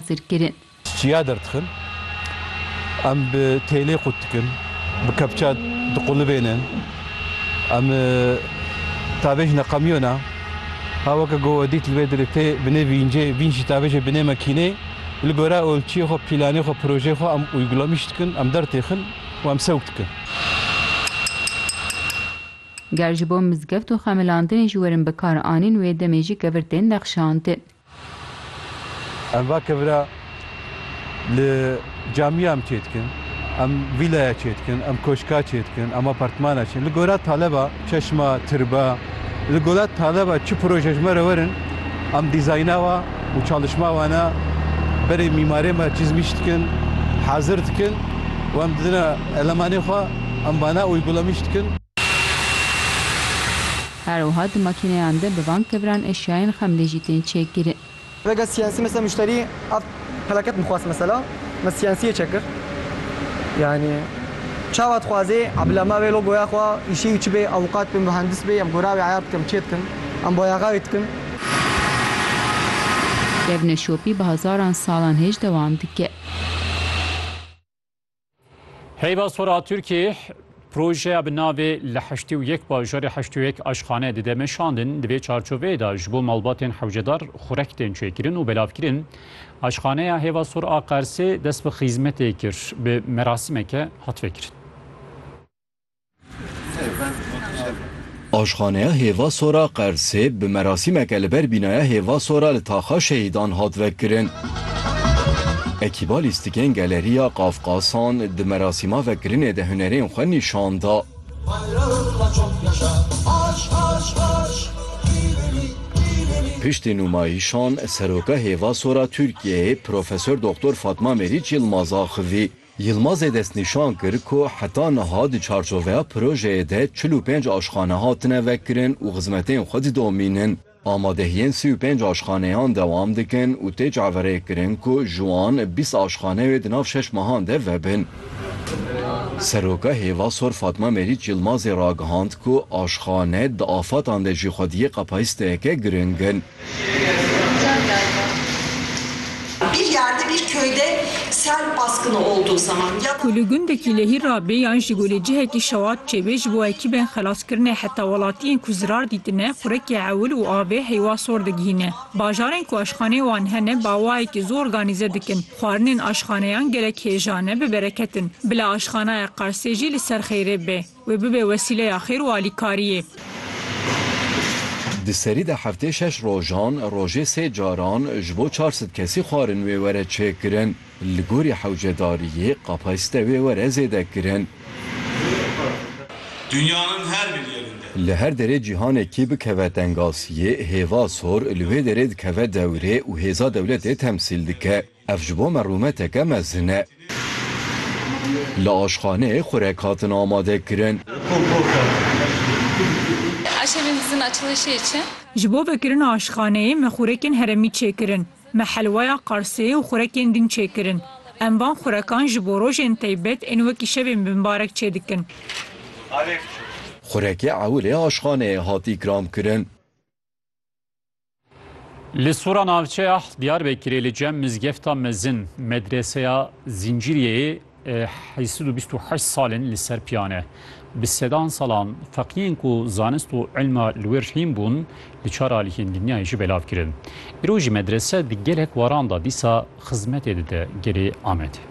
hazir kirin. Çiya derdixin, em bi têlê qut dikin, bi kepça diqulibênin, em tavê jî neqemiyona, ha weke ku we dît li vê derê tê binê vîncê, vînc jî tavê jê binê mekînê, li gora olçiyê xwe, pîlanê xwe, projeyê xwe em uygulamîş dikin, em dertêxin û em sewk dikin. Ger ji bo mizgeft û xemilandinê ji werin bikaranîn wê demê jî kevir tên nexşandin. Em va kevira li camiya em çê dikin, em vîlaya çê dikin, em koşka çê dikin, em apartmana çê. Li gora taleba, çeşma, tirba, li gora taleba çi proje ji me re werin, em dîzayna wan û çalişma wana berê mîmarê me çizmiş dikin, hazir dikin û em didine elemanê xwe, em wana uygulamış dikin. Her wiha di makîneyan de bi van keviran eşyayên xemlê jî tên çêkirin. Rega CNC mesela muşterî ev peleket bixwast mesela me CNC yê çekir. Yanî çawa dixwazê bila me vê logoya xwe îşê wî çi bê, avukat bê, muhendis bê em gora wê eyar bikim, çê dikim, em bayaxa wê dikim. Kevine şopî bi hezaran salan hêj dewam dike. Heyva sora Tirkiyê projeya bi navê li heştê û yek bajarê heştê û yek aşxane dide meşandin. Di vê çarçoveyê de ji bo malbatên hewcedar xurek tên çêkirin û belavkirin. Aşxaneya Hêva Sor a Qersê dest bi xîzmetê kir. Bi merasimeke hat vekirin. Aşxaneya Hêva Sora Qersê bi merasîmeke li ber bînaya Hêva Sora li Taxa Şehîdan hat vekirin. Ekîba lîstikên Galeriya Qafqasan di merasîma vekirinê de hunerên xwe nîşan da. Piştî nûmayîşan Seroka Hêva Sora Tirkiyeyê Profesor Doktor Fatma Meriç Yilmaz axivî. Yilmazê destnîşan kir ku heta niha di çarçoveya projeyê de çil û pênc aşxane hatine vekirin û xizmetên xwe didomînin. Amadehiyên sî û pênc aşxaneyan dewam dikin û tê çaverêkirin ku ji wan bîst aşxane wê di nav şeş mehan de vebin. Seroka Hêva Sor Fatma Merîç Yilmazê ragihand ku aşxane di afatan de jî xwediyê qapayîsteyeke giring in. Ku li gundekî lehî re bê yan ji golê cihekî şewat çêbê ji bo ekîbên xelaskirinê heta welatiyên ku zirar dîtine xurekê ewil û avê heywa sor digihîne. Bajarên ku aşxaneyên wan hene bawayekî zû organîze dikin. Xwarinên aşxaneyan gelek hêja ne, bibereketin. Bila aşxanaya Qarsê jî li ser xeyrê bê. Wê bibe wesîleya xêr û alîkariyê. Di serî de heftê şeş rojan, rojê sê caran ji bo çar sed kesî xwarin wê were çêkirin. Li gorî hewcedariyê kapasîte wê were zêde kirin. Li her derê cîhanekî bikeve tengasiyê, hêva sor li wê derê dikeve dewrê û hêza dewletê temsîl dike. Ev ji bo me rûmeteke mezin e. Li aşxaneyê xurek hatin amadekirin. Aşevên dizin açilişê ye çi? Ji bo vekirina aşxaneyê me xurekên heremî çêkirin. Me helwaya qarsê û xurekên din çêkirin. Em van xurekan ji bo rojên teybet ên wekî şevên bimbarek çêdikin. Xurekê ewilê aşxaneyê hat îkramkirin. Li Sora Navçeya Diyarbekirê li cem mizgefta mezin medreseya Zincîriyeyê heysid û bîst û heşt salên li ser piyane. Bi sedan salan feqiyên ku zanist û ilma li wê rihîn bûn li çar aliyên dinyayê jî belav kirin. Îro jî medrese di gelek waran da dîsa xizmetê dide gelê Amedê.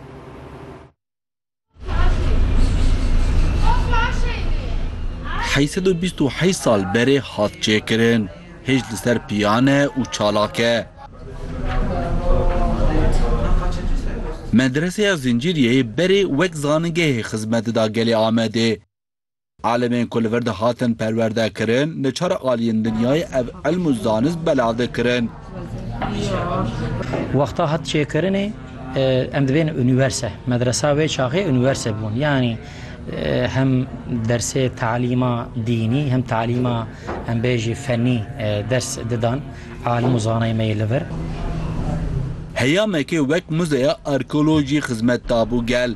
Heyî sed û bîst û heyî sal berê hat çêkirin. Hêj li ser piyan e û çalak e. Medreseya Zincîriyeyê berê wek zanîngehê xizmet dida gelê Amedê. Alimên ku li vir dihatin perwerdekirin, li çar aliyên dinyayê ev ilm û zanist belav dikirin. Wexta hat çêkirinê em dibêjin unîverse. Medresa wê çaxê unîverse bûn. Yanî hem dersê talîma dînî hem talîma em bêjî fenî ders didan alim û zanayên me yê li vir. Heyamekê wek muzeya arkeolojî xizmet dabû gel.